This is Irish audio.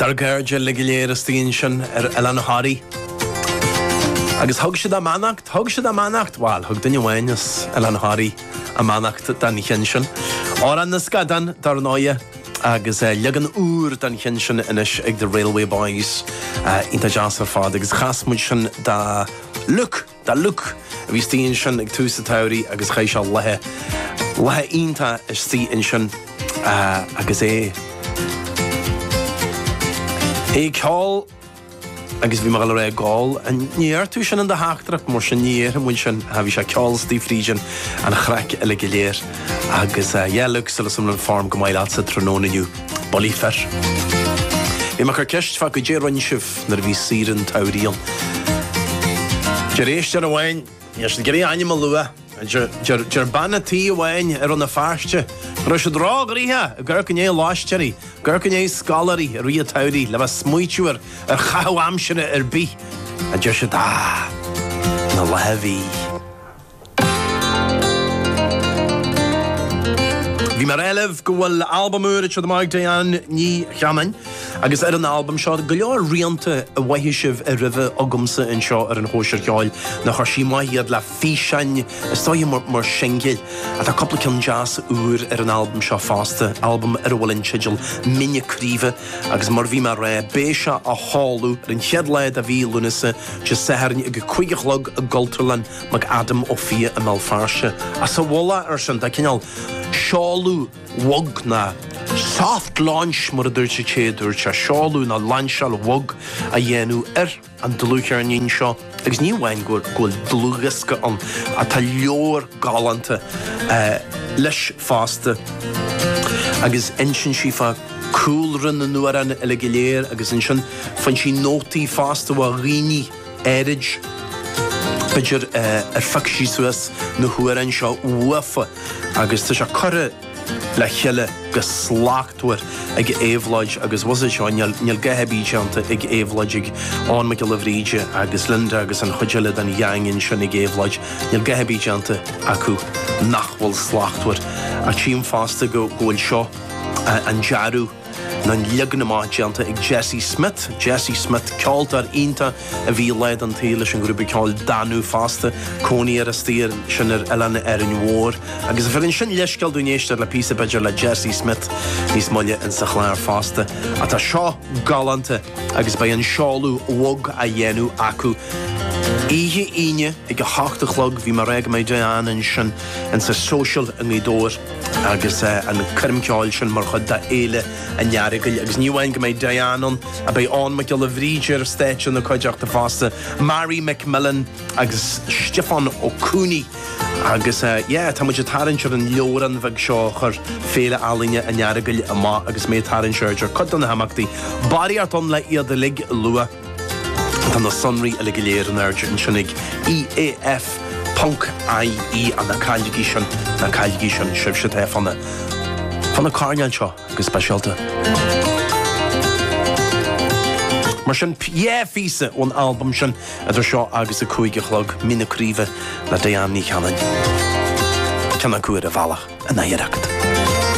Dár gcairde uilig go léir istigh ansin ar Oileán Thoraí. Agus thug siad a mbeannacht, thug siad a mbeannacht, bhail, thug duine amháin as Oileán Thoraí a mbeannacht don cheann sin. Amhrán na Scadán, dar ndóigh, agus leagan úr den cheann sin anois ag The Railway Boys. Iontach deas ar fad agus chas muid sin do Luke. Do Luke, a bhí istigh ansin ag tús an tsamhraidh agus chaith sé laethe, laethe iontacha istigh ansin agus é, é ag ceol agus bhí mé ag gabháil a rá ag ól, níor dhúirt tú sin in do theachtaireacht, mar sin, ní dhéarfaidh muid sin, bhí sé ag ceol istigh fríd an, an chraic uilig go léir agus, yeah, Luke, súil, súil agam go bhfuil an form go maith leatsa tráthnóna inniu. Bolifer. Bhí mé ag cur ceist fá goidé a rinne sibh nuair a bhí saoire an tsamhraidh ann. Deir éisteoir amháin, níl siad ag iarraidh ainm a lua, deir deir bean a' tí amháin i Rann na Feirste go raibh siad róghnoitheach ag amharc i ndiaidh lóistéirí, ag amharc i ndiaidh scoláirí i rith an tsamhraidh le bheith ag smaoitiú ar ar chaitheamh aimsire ar bith, a deir siad, ach na laetha a bhí. Bhí mé ag rá libh go bhfuil albam úr ag teacht amach ag Diane Ní Chanainn agus ar an albam seo go leor rianta a mhothaigh sibh roimhe agamsa anseo ar an Chóisir Cheoil nó chuir sí amach iad le físeáin is dóigh mar shingil ach tá cúpla ceann deas úr ar an albam seo fosta, albam ar a bhfuil an teideal Mín na Craoibhe agus mar bhí mé ag rá beidh sé á sheoladh ar an chéad lá de mhí Lúnasa, Dé Sathairn ag a cúig a chlog i gCultúrlann. McAdam Ó Fiaich i mBéal Feirste sa mhullach air sin, tá cineál seoladh bhog nó soft launch mar a dúirt an té a dúirt é, seoladh nó lainseáil bhog á dhéanamh ar an dlúthcheirnín seo agus ní amháin go bhfuil dlúthdhiosca ann ach tá leabhar galánta leis fosta agus insíonn sí fá chúlra na n-amhrán uilig go léir agus ansin faigheann sí nótaí fosta ó dhaoine Ar b'fhéidir ar phioc sí suas na hamhráin seo uafa agus tá sé curtha le chéile go slachtmhar ag Éabhlóid agus was it seo níl a dhath ar bith déanta ag Éabhlóid ag Eoghan Mac Giolla Bhríde agus Linda agus an chuid eile den ghang ansin ag Éabhlóid níl a dhath ar bith déanta acu nach bhfuil slachtmhar ach tchím fosta go bhfuil seo an dearadh Nó an leagan amach déanta ag Jesse Smith. Jesse Smith, ceoltóir iontach a bhí lá den tsaol leis an ghrúpa ceoil Danú fosta, cónaí air istigh ansin ar oileán Árainn Mhór. Agus bheireann sin leithscéal dúinn éisteacht le píosa b'fhéidir le Jesse Smith níos moille insa chlár fosta. Ach tá seo galánta agus beidh an seoladh bhog á dhéanamh acu oíche Aoine ag a hocht a chlog. Bhí mé ag rá go mbeidh Diane ansin insa social i nGaoth Dobhair. agus an coirm ceoil sin mar chuid de Fhéile an Earagail agus ní amháin go mbeidh Diane ann ach beidh Eoghan Mac Giolla Bhríde ar stáitse ina cuideachta fosta, Mary McMillan agus Stiofán Ó Cooney agus yeah tá muid ag tarraingt ar an leabhrán bheag seo a chuir Féile Ealaíne an Earagail amach agus mé ag tarraingt aird ar chuid de na himeachtaí. Barraíocht ann le iad uilig a lua. Tá na sonraí uile go léir in airde ansin ag, EAF. ie ach ná cailligí sin, ná cailligí sin sibhse atá ag fanacht fá na coirnéil seo go speisialta. Mar sin, dhá phíosa ón albam sin idir seo agus a cúig a chlog, Mín na Craoibhe le Diane Ní Chanainn. Ceann acu ar a bhealach in aicearracht.